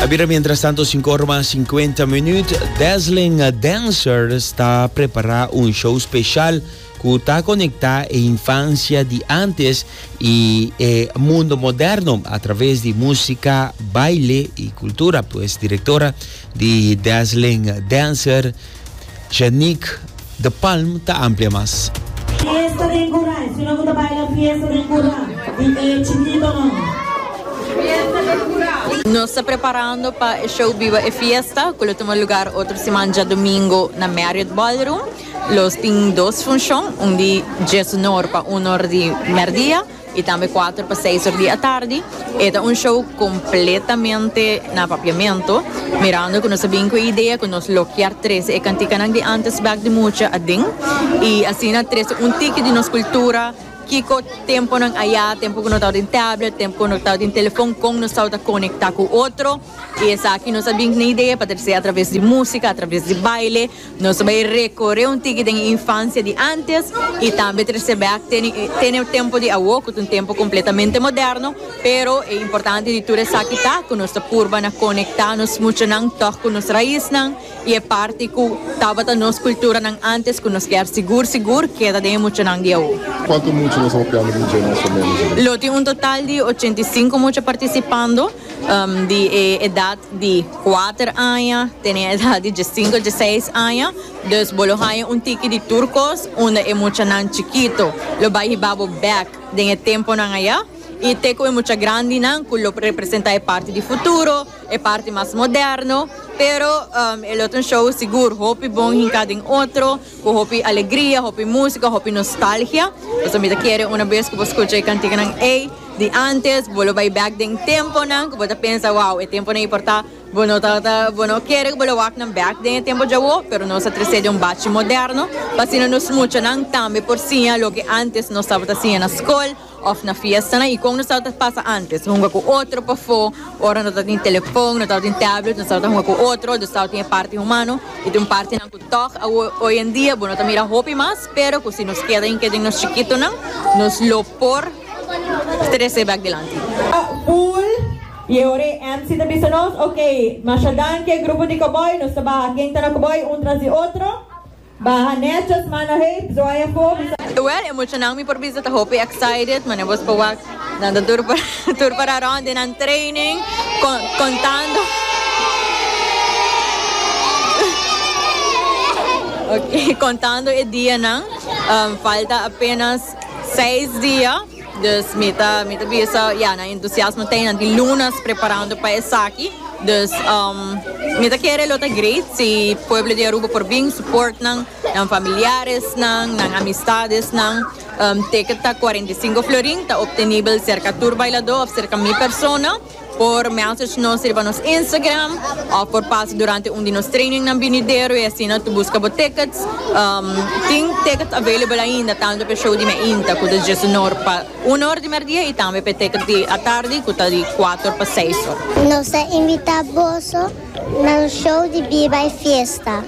A bira mientras tanto sinku ora mas sinkuenta minuut. Dazzling Dancer sta prepará un show speshal ku ta konektá e infansia di antes i e mundo moderno a traves di músika, baile i kultura. Pues direktora di Dazzling Dancer, Janique de Palm ta amplia mas. Fiesta den Curá e fina cu ta baila fiesta den Curá y e chinibanan. Nos ta preparando pa e show Biba e Fiesta cu lo tuma lugar otro siman djadomingo na Marriott Ballroom. Lo tin dos funcion, un di djeshonor pa uno or di merdia. I tambe kuater pa seis or di atardi. E ta un show kompletamente na papiamentu, mirando ku nos a bin ku e idea ku nos lo kier trese e kantikanan di ántes bèk di mucha aden i asina trese un tiki di nos kultura, kiko tempunan ayá, tempu ku no tabata den tèblet, tempu ku no tabata den telefòn, kon nos tabata konektá ku otro. I esaki nos a bin ku na idea pa trese atraves di músika, atraves di baile. Nos bai recorre un tiki den e infancia di antes y tambe trece back tene e tempo di awo cu ta un tempo completamente moderno, pero e importante di tur esaki ta cu nos ta purba na conecta nos muchanan tog cu nos raiznan y e parti cu tabata nos culturanan antes cu nos kier sigur sigur keda den e muchanan di awo. Cuanto mucha nos a hopiando di dje na Esho Manager? Lo tin un total di ochenta y cinco mucha participando. di e edat di kuater aña te na e edat di diesinko dieseis aña dus bo lo haña un tiki di tur kos unda e muchanan chikito lo bai hiba bo bèk den e tempunan ayá i te ku e mucha grandinan ku lo representá e parti di futuro e parti mas moderno pero e lo ta un show sigur hopi bon hinká den otro. Cu hopi alegria, hopi musica, hopi nostalgia. Pasobra mi ta kere una bes cu bo scucha e canticanan ey di antes, bo lo bay back den e temponan cu bo ta pensa, wow, e temponan ey por ta, bo no ta, ta, bo no kere cu bo lo wak nan back den e tempo djawo, pero nos a trece den un bachi moderno pa asina nos muchanan tambe por siña loke antes nos tabata siña na scol, Of na fiestanan y con nos tabata pasa antes hunga cu otro pafo ora no tabatin telefon no tabatin tablet nos tabata hunga cu otro dus tabata tin e parti humano y tin partinan cu tog awo hoy en dia bo no ta mira hopi mas pero cu si nos keda ain ke den nos chikitonan nos lo por trece bek dilanti. Full y e ora e MC ta bisa nos, Ok, masha danke grupo di Cowboy, nos ta baha ken ta na Cowboy un tras di otro. Baha Netjot mano hei bzoy afó mi sa. Well e muchanan mi por bisa ta hopi excited mane bos por wak nan ta tur para tur para rond den nan training con contando okay contando e dianan falta apenas seis dia. Dus mi ta mi ta bisa ya nan entusiasmo ta nan di lunas preparando pa esaki dus mi ta kere lo ta great si pueblo di Aruba por bin support nan nan familiaresnan nan amistadesnan teken ta cuarenta y cinco florin ta optenibel serka tur bailador of serka mi persona. Por message nos riba nos Instagram of por pasa durante un di nos trainingnan binidero y asina to busca bo tickets. Um, tin tickets available ainda tanto p'e show di meinta cu ta djiesunor pa una or di merdia y tambe p'e tickets di atardi cu ta di cuater pa seis or. Nos ta invita boso na nos show di Biba e Fiesta.